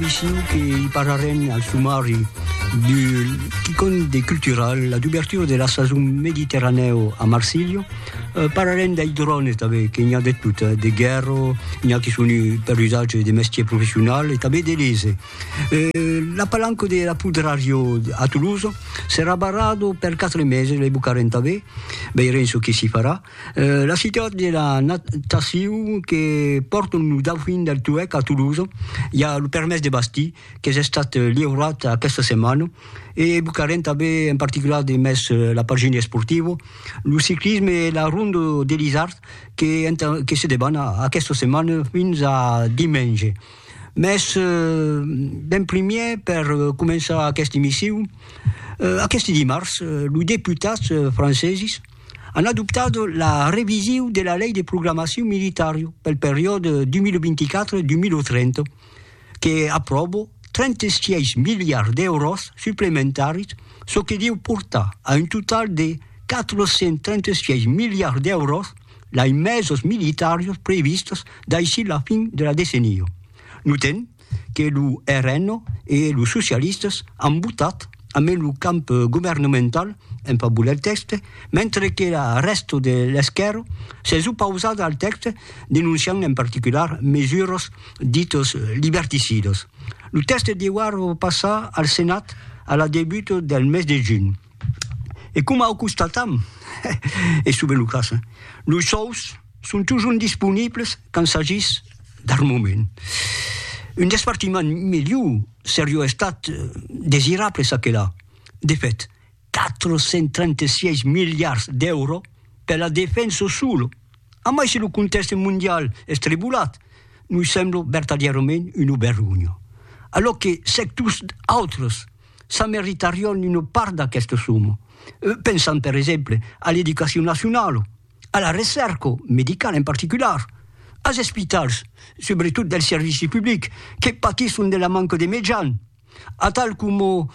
Issiu que i parlarem al sumari du quicòm de cultural, la dubertura de la sason mediterranèu a Marsilha. Parlarem dei drones tanben, que n'i a de tot, de guèrra, n'i a que son per usatge de mestier professional e tanben de lese. La palanca de la Pudrario a Tolosa serà barrada per quatre meses, lei bocarem tanben, veirem çò que s'i farà. La citat de la natacion que pòrton lo Dauphin del Touèc a Toulouse, i a lo permés de bastir qu'es estat liurat aquesta setmana e evocarem tanben en particular de mes la pagina esportiva, lo ciclisme e la Ronda de l'Isard que entà que se deban aquesta setmana fins a dimenge. Mes d'en primièr per començar aquesta emission, aqueste dimars los deputats franceses, an adoptat la revisiu de la Lei de Programacion Militari pel periòde 2024-2030, que apròbo 36 miliards d'èuros suplementaris, çò que deu portar a un total de 436 miliards d'èuros d'aimesos militaris previstos daicí la fin de la decenia. Notem que lo RN e los socialistas an votat amé lo camp governamental en favor del tèxte, mentre que la rèsta de l'esquèrra s'es opausada al tèxte denonciant en particular mesuras ditas liberticidas. Lo tèxte deuar passar al Senat a la debuta del mes de junh. E coma o constatam, es sovent lo cas, los sòus, Son totjorn disponibles quand s'agís d'armament. Un despartiment melhor serió estat desirable çà que là. De fèt, 436 miliards d'èuros per la defensa sola, a mai se lo contèxte mondial es tribolat, nos sembla vertadièrament una vergonha, alòc que sectors autres s'ameritarion una part d'aquesta soma. Pensam per exemple a l'educacion nacionala. a la recèrca medicala en particular, as espitals, subretot del servici public, que patisson de la manca de mejan, atal coma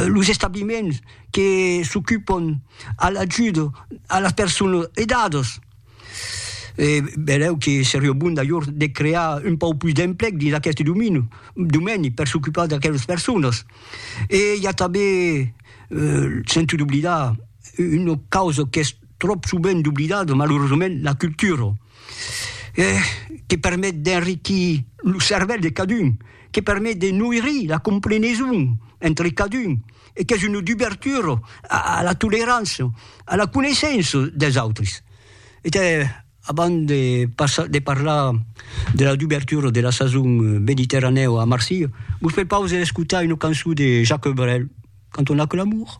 los establiments que s'ocupon a l'ajuda a las personas aidadas. E benlèu que seriá bon d'ajor de crear un pauc pus d'emplec dins aqueste domini, domeni per s'ocupar d'aquelas personas. E i a tanben, sento d'oblidar, una causa qu'es, tròp sovent oblidat, malerosament, la cultura, que permet d'enriquir lo cervèl de cadun, que permet de noirir la compreneson entre cadun e qu'es una dubertura a la tolerança, a la coneissença dels autres. E te, abans de passar, de parlar de la dubertura de la sason mediterranèu a Marsilha, vos prepaus a escotar una cançon de Jacques Brel, canton Aquel amour.